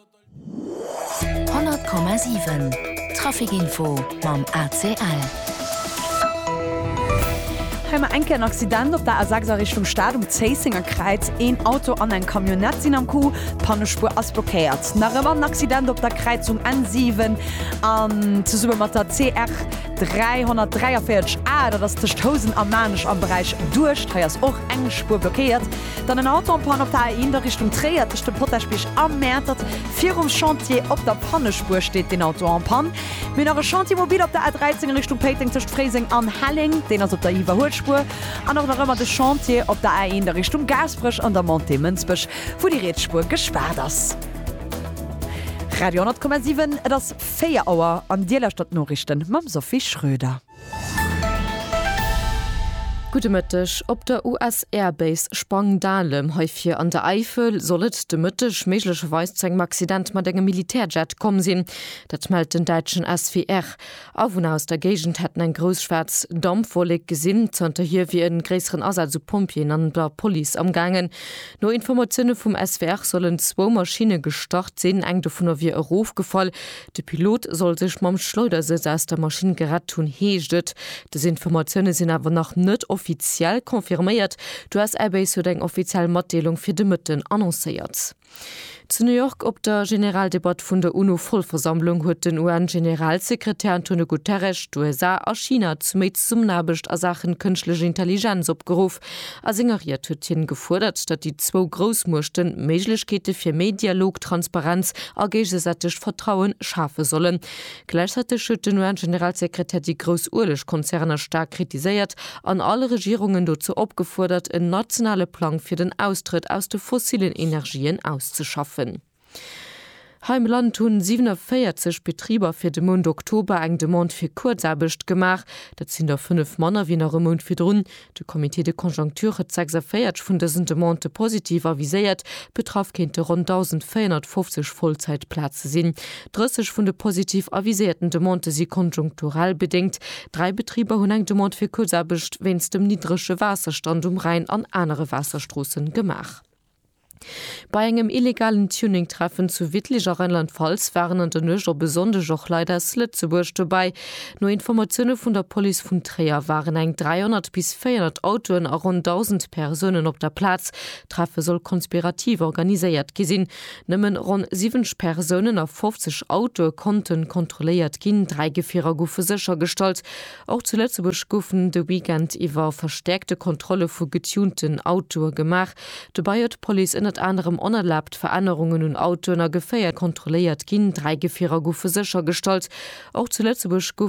100,7 Traficinfo mam ACL. Hei mar eng Kéier en Accident op der A6 a Richtung Stad um Zéissenger Kräiz. Een Auto an eng Camionnette sinn am Coup, d'Pannespuer ass blockéiert. Nach ëmmer en Accident op der Kräizung N7 an zesumme mat der CR 343 A, dat ass tëscht Housen a Maarnech am Beräich Duerscht. Hei ass och eng Spuer blockéiert. Dann en Auto en panne op der A 1 a Richtung Tréier tëscht dem Potaschbierg a Mäertert. Virum Chantier op der Pannespuer steet deen Auto en panne. Mir hu nach e Chantier mobil op der A 13 a Richtung Péiteng tëscht Fréiseng an Helleng. Deen ass op der Iwwerhuelspuer. An och nach ëmmer de Chantier op der A 1 a Richtung Gaasperech an der Montée Mënsbech, wou déi riets Spuer gespaart ass. Radio 10,7 Et ass 4 Auer an Dir lauschtert d'Noriichten mam Sophie Schröder. Gudde Mëtteg. Op der US-Air-Base Spangdahlem, hei vir an der Äifel, soll et de Mëtteg méiglecherweis zu engem Accident mat engem Militärjet komm sinn. Dat mellt den däitschen SWR. Awunner aus der Géigend hätten eng grouss schwaarz Dampwollek gesinn. Zanterhier wier e gréisseren Asaz u Pompjeeën an der Police amgaangen. No Informatioune vum SWR sollen zwou Maschinne gestart sinn. Eng dovunner wier erofgefall, De Pilot soll sech mam Schleudersëtz aus der Maschinn gerett hunn, heescht et. Dës Informatioune sinn awer nach net offiziell confirméiert. D'US Air Base huet eng offiziell Matdeelung fir de Mëtten annoncéiert. Zu New York op der Generaldebatt vun der UNO-Vollversammlung huet den UN-Generalsekretär Antonio Guterres d'USA a China zu méi Zesummenaarbecht a Saachen Kënschtlech Intelligenz opgeruff. A senger Ried huet hien gefuerdert, datt déi zwou Groussmuechten Méiglechkeete fir méi Dialog, Transparenz a géigesätegt Vertrauen schafe sollen. Gläichzäiteg huet den UN-Generalsekretär déi grouss Uelegkonzerner staark kritiséiert an all Regierungen dozou opgefuerdert, en nationale Plang fir den Austrëtt aus de fossillen Energien auszeschaffen. Hei am Land hu 47 Betriber fir de Mount Oktober eng Demande fir Kuerzaarbecht gemaach. Dat sinn der fënnef manner wéi nach e Mount virdrun. De Comité de conjoncture huet 46 vun dësen Demandë positiv aviséiert. Betraff kéinte ronn 1.450 Vollzäitplaze sinn. 30 vun de positiv aviséierten Demandë si konjunkturell bedéngt. Dräi Betriber hunn eng Demande fir Kuerzaarbecht wéinst dem niddrege Waasserstand um Rhäin an anere Waasserstroosse gemaach. Bei engem illegalen Tuning-Treffen zu Wittlich a Rheinland-Pfalz waren an der Nuecht op e Sonndeg och Leit aus Lëtzebuerg dobäi. No Informatioune vun der Police vun Tréier waren eng 300 bis 400 Autoen a ronn 1.000 Persounen op der Plaz. D'Treffe soll konspirativ organiséiert gi sinn. Nëmmen ronn 70 Persounen a 50 Autoe konnten kontrolléiert ginn. Dräi Gefierer goufe séchergestallt. Och zu Lëtzebuerg goufen de Weekend iwwer verstäerkte Kontrolle vu getunten Autoe gemaach. Dobäi huet d'Police ënnert anerem onerlaabt Verännerungen un Autoen a Geféier kontrolléiert ginn. Dräi Gefierer goufe séchergestallt. Och zu Lëtzebuerg gouf.